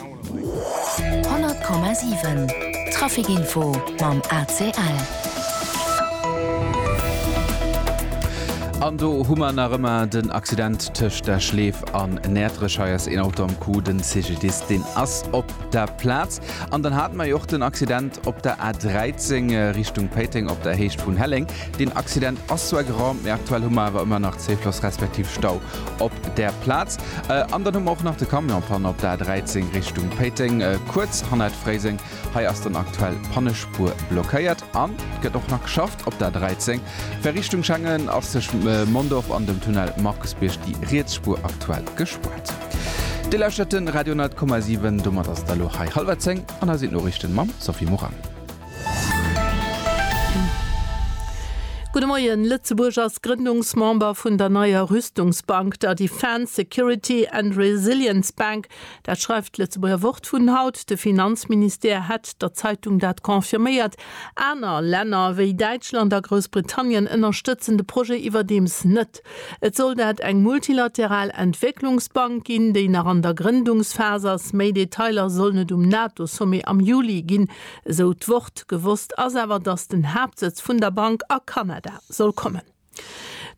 100,7 Trafic Info mam ACL. An do hu mer nach ëmmer den Accident tëscht der Schleef an Näertrech. Hei ass een Auto am Coup, den CGDIS deen ass op der Plaz. An dann hate mer jo och den Accident op der A 13 Richtung Péiteng op der Héicht vun Helleng. Deen Accident ass zwar geraumt, mee aktuell hu mer awer ëmmer nach Zéifloss respektiv Stau op där Plaz. An dann hu mer och nach de Camion Panne op der A13 Richtung Péiteng, kuerz hannert Fréiseng. Hei ass dann aktuell d'Pannespuer blockéiert an et gëtt och nach geschafft op der A13. Fir Richtung Schengen ass tëschent Mondorf an dem Tunnel Markusbierg déi riets Spuer aktuell gespuert. Dir lauschtert de Radio 100,7. Domat ass et elo hei hallwer zéng an hei sinn d'Noriichten mam Sophie Morang. Gudde Moien, Lëtzebuerg ass Grëndungsmember vun der neier Rüstungsbank, der Defence, Security and Resilience Bank. Dat schreift d'Lëtzebuerger Wort vun haut. De Finanzministère hätt der Zeitung dat confirméiert. Aner Länner, wéi Däitschland a Groussbritannien, ënnerstëtzen de Projet iwwerdeems net. Et soll dat eng multilateral Entwécklungsbank ginn, déi nach an der Grëndungsphas ass. Méi Detailer sollen et um NATO-Sommet am Juli ginn. Esou d'Wort. Gewosst ass awer, datt den Haaptsëtz vun der Bank a Kanada soll kommen.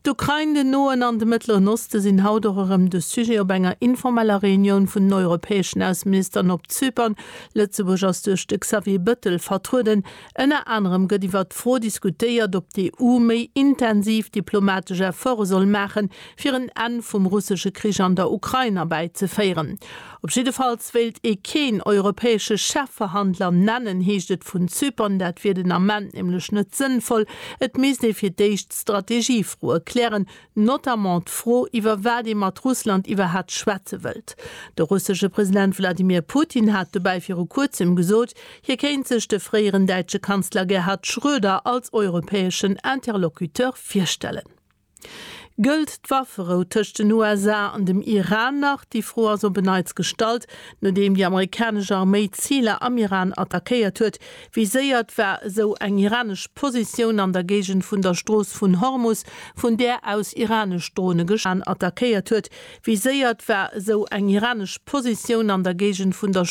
D'Ukrain, den Noen an de Mëttleren Oste sinn haut och erëm de Sujet op enger informeller Reunioun vun den europäeschen Ausseministeren op Zypern. Lëtzebuerg ass duerch de Xavier Bëttel vertrueden. Ënner anerem gëtt iwwert d'Fro diskutéiert, ob d'EU méi intensiv diplomatesch Efforte soll maachen, fir en Enn vum russesche Krich an der Ukrain erbäizeféieren. Op jiddefalls wéilt ee keen europäesche Chefverhandler nennen, heescht et vun Zypern. Dat wier den Ament nämlech net sënnvoll. Et misst ee fir d'éischt d'Strategiefroe klären, notamment d'Fro, iwwer wat ee mat Russland iwwerhat schwätze wëllt. De russesche President Wladimir Putin hat dobäi viru kuerzem gesot, hie kéint sech de fréieren däitsche Kanzler Gerhard Schröder als europäeschen Interlocuteur virstellen. Gëllt d'Wafferou tëscht den USA an dem Iran nach? Déi Fro ass op en Neits gestallt, nodeem déi amerikanesch Arméi Ziler am Iran attackéiert huet. Wéi séiert war esou eng iranesch Positioun an der Géigend vun der Strooss vun Hormus, vun där aus iranesch Drone geschwat ginn ass? Wéi séiert war esou eng iranesch Positioun an der Géigend vun der Strooss vun Hormus, vun där aus iranesch Drone geschwat ginn ass?